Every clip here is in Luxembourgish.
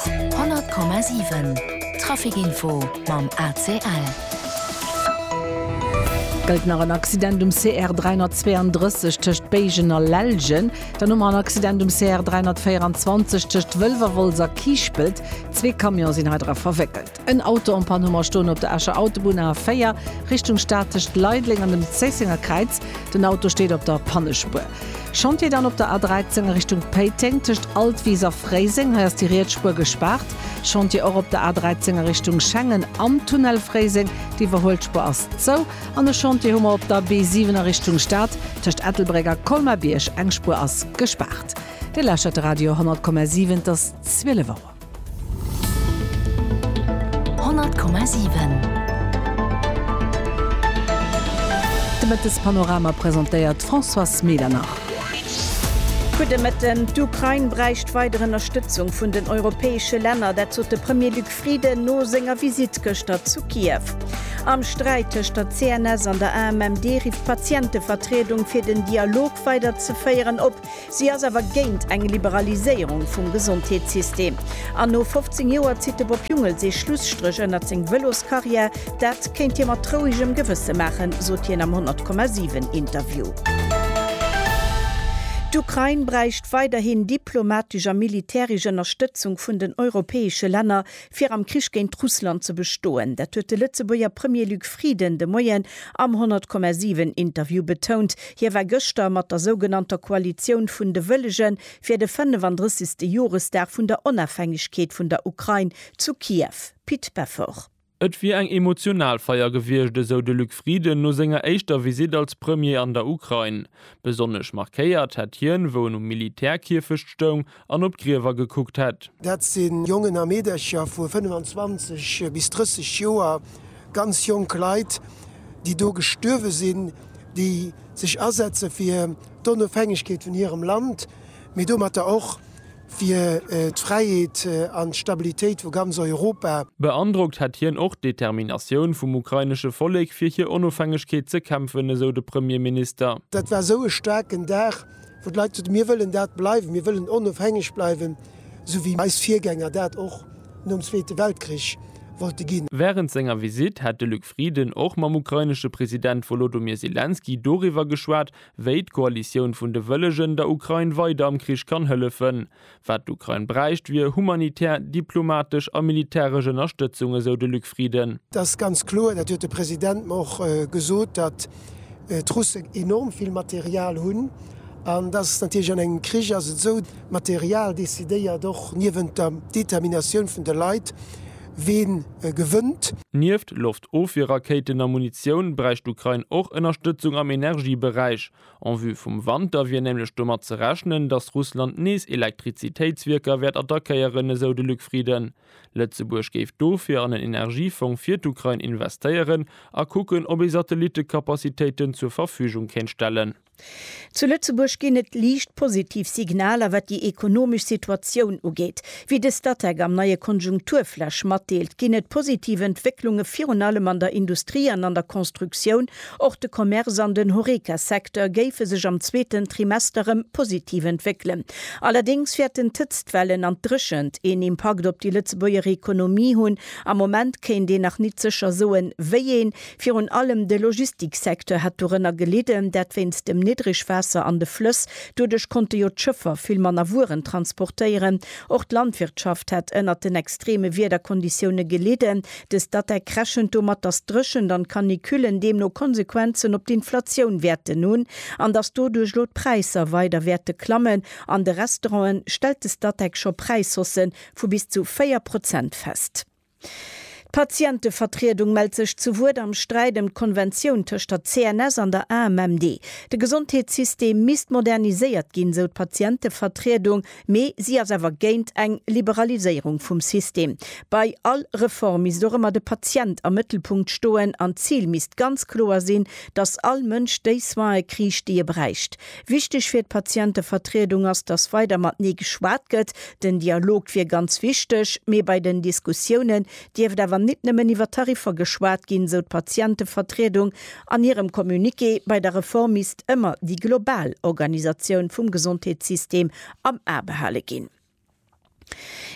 100,7 Trafic Info mam ACL. Gëllt nach en Accident um CR 332 tëscht Béigen a Lellgen. Dann hu mer en Accident um CR 324 tëscht Wëlwerwolz a Kiischpelt. Zwee Camion sinn heidra verwéckelt. En Auto en Panne Hummer stoen op der Escher Autobunn A 4, Richtung Stad tëscht Leideleng an dem Zéissenger Kräiz. Den Auto steet op der Pannespuer. Chantier dann op der A 13 a Richtung Péiteng tëscht Altwis a Fréiseng. Hei ass déi riets Spuer gespaart. Chantier och op der A 13 a Richtung Schengen am Tunnel Fréiseng. D'Iwwerhuelt Spuer ass zou. An e Chantier hu mer op der B 7 a Richtung Stad tëscht Ettelbréck a Colmar-Bierg. Eng Spuer ass gespaart. Dir lauschtert de Radio 100,7, et ass 12 Auer. De Mëttespanorama presentéiert d'Françoise Medernach. Gudde Mëtten, D'Ukrain bräicht weider Ënnerstëtzung vun den europäesche Länner, dat sot de Premier Luc Frieden no senger Visitt gëschter zu Kiew. Am Sträit tëscht der CNS an der AMMD rifft d'Patientevertriedung fir den Dialog weider ze féieren op. Si ass awer géint eng Liberaliséierung vum Gesondheetssystem. An no 15 Joer zitt de Bob Jungels ee Schlusstréch ënnert seng Vëloskarriär. Dat kéint hie mat rouegem Gewësse maachen, sot hien am 100,7 Interview. D'Ukrain bräicht weiderhin diplomatesch a militäresch Ënnerstëtzung vun den europäesche Länner, fir am Krich géint Russland ze bestoen. Dat huet de Lëtzebuerger Premier Luc Frieden de Moien am 100,7 Interview betount. Hie war gëschter mat der sougenannter Koalitioun vun de Wëllege fir de 35. Joresdag vun der Onafhängegkeet vun der Ukrain zu Kiew. Pit Peffer. Et wier eng emotional Feier gewiescht, esou de Luc Frieden no senger éischter Visitt als Premier an der Ukrain. Besonnesch markéiert hätt hien, wou en um Militärkierfecht stoung, an op d'Griewer gekuckt hätt. Dat si Jongen a Meedercher vu 25 bis 30 Joer, ganz jonk Leit, déi do gestuerwe sinn, déi sech asetze fir d'Onofhängegkeet vun hirem Land, mee domatter och fir d'Fräiheet an d'Stabilitéit vu ganz Europa. Beandrockt hätt hien och d'Determinatioun vum ukrainesche Vollek, fir hir Onofhängegkeet ze kämpfen, esou de Premierminister. Dat war esou e staarken Dag. wou d'Leit gesot hunn, mir wëllen dat bleiwen, mir wëllen onofhängeg bleiwen, esou wéi eis Virgänger dat och nom Zweete Weltkrich wollte ginn. Wärend senger Visitt hätt de Luc Frieden och mam ukrainesche President Wolodomir Selenskyj doriwwer geschwat, wéi d'Koalitioun vun de Wëllegen der Ukrain weider am Krich kann hëllefen. Wat d'Ukrain bräicht, wier humanitär, diplomatesch a militäresch Ënnerstëtzung, esou de Luc Frieden. Et ass ganz kloer, dat huet de President mer och gesot, datt d'Russen enorm vill Material hunn. An datt ass natierlech, an engem Krich ass et esou, d'Material decidéiert och niewent der Determinatioun vun de Leit, ween gewënnt. Nieft Loftofwierrakéiten a Munitioun bräicht d'Ukrain och Ënnerstëtzung am Energieberäich. En vue vum Wanter wier nämlech domat ze rechnen, datt Russland nees Elektrizitéitswierker wäert attackéieren, esou de Luc Frieden. Lëtzebuerg géif dofir an en Energiefong fir d'Ukrain investéieren a kucken, ob ee Satellitekapazitéiten zur Verfügung kéint stellen. Zu Lëtzebuerg ginn et liicht positiv Signaler, wat déi ekonomesch Situatioun ugeet. Wéi de Statec am neie Konjunkturflash matdeelt, ginn et positiv Entwécklunge virun allem an der Industrie an an der Constructioun, Och de Commerce an den Horeca-Secteur géife sech am zweeten Trimester rëm positiv entwéckelen. Allerdéngs wäerten d'Hëtztwellen an d'Dréchent een Impakt op déi Lëtzebuerger Ekonomie hunn. Am Moment kéint een nach nit sécher soen, wéi een. Virun allem de Logistik-Secteur hätt dorënner gelidden, dat wéinst dem Niddregwaasser an de Flëss. Doduerch konnte jo d'Schëffer vill manner Wueren transportéieren. Och d'Landwirtschaft hätt ënnert den extreme Wiederkonditioune gelidden. Dës Datec rechent domat, datt d'Dréchent an d'Canicullen deemno Konsequenzen op d'Inflatioun wäerten hunn an datt doduerch elo d'Präisser weider wäerte klammen. An de Restaurante stellt de Statec scho Präishausse vu bis zu 4 Prozent fest. D'Patientevertriedung mellt sech zu Wuert am Sträit ëm d'Konventioun tëscht der CNS an der AMMD. De Gesondheetssystem misst moderniséiert ginn, sou d'Patientevertriedung. Mee si ass awer géint eng Liberaliséierung vum System. Bei all Reform misst och ëmmer de Patient am Mëttelpunkt stoen an d'Zil misst ganz kloer sinn, datt all Mënsch déi Soine kriicht, déi e bräicht. Wichteg fir d'Patientevertriedung ass, datt weider matenee geschwat gëtt. Den Dialog wier ganz wichteg, mee bei den Diskussiounen dierft awer nit nëmmen iwwer Tariffer geschwat ginn, sou d'Patientevertriedung an hirem Communiqué. Bei der Reform misst ëmmer déi global Organisatioun vum Gesondheetssystem am A behale ginn.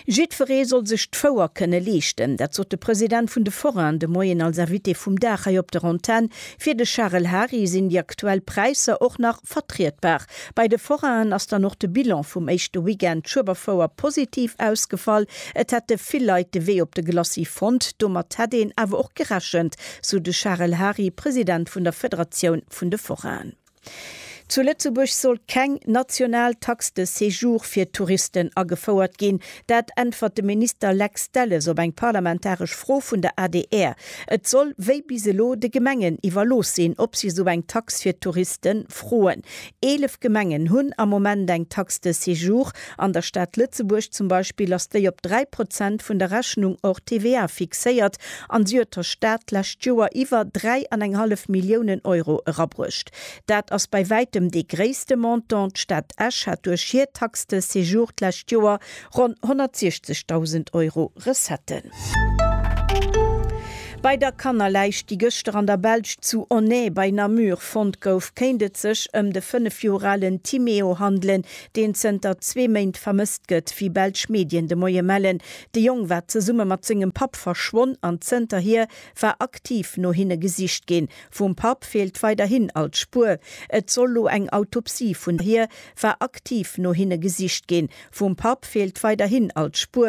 Jiddweree soll sech d'Fouer kënne leeschten, dat sot de President vun de Forainen de Moien als Invité vum Dag hei op der Antenn. Fir de Charel Hary sinn déi aktuell Präisser och nach Herbst vertrietbar. Bei de Forainen ass dann och de Bilan vum éischte Weekend Schueberfouer positiv ausgefall. Et hätte vill Leit de Wee op de Glacis fonnt, domat hätt een awer och gerechent, sou de Charel Hary, President vun der Federatioun vun de Forainen. Zu Lëtzebuerg soll keng national Taxe de séjour fir Touristen agefouert ginn, Dat äntwert de Minister Lex Delles op eng parlamentaresch Fro vun der adr. Et soll wéi bis elo de Gemengen iwwerlooss sinn, ob si esou eng Tax fir d'Touriste froen. Eelef Gemengen hunn am Moment eng Taxe de séjour. An der Stad Lëtzebuerg zum Beispill ass déi op 3 Prozent vun der Rechnung hors TVA fixéiert an si huet der Stad d'lescht Joer iwwer dräi an eng hallef Milliounen Euro erabruecht. Dat ass bei wäitem dee gréisste Montant. D'Stad Esch hat duerch hir Taxe de séjour d'lescht Joer ronn 160.000 Euro Recetten. Bei der Kannerläich, déi gëschter an der Belsch zu Onnaye bei Namur fonnt gouf, kéint et sech ëm de 5 Joer alen Timéo handelen, deen zënter zwee Méint vermësst gëtt, wéi belsch Medien de Moie mellen. De Jong war zesumme mat sengem Papp verschwonn an zënterhier war aktiv no hinne gesicht ginn. Vum Papp feelt weiderhin all Spuer. Et soll lo eng Autopsie vun hir war aktiv no hinne gesicht ginn. Vum Papp feelt weiderhin all Spuer.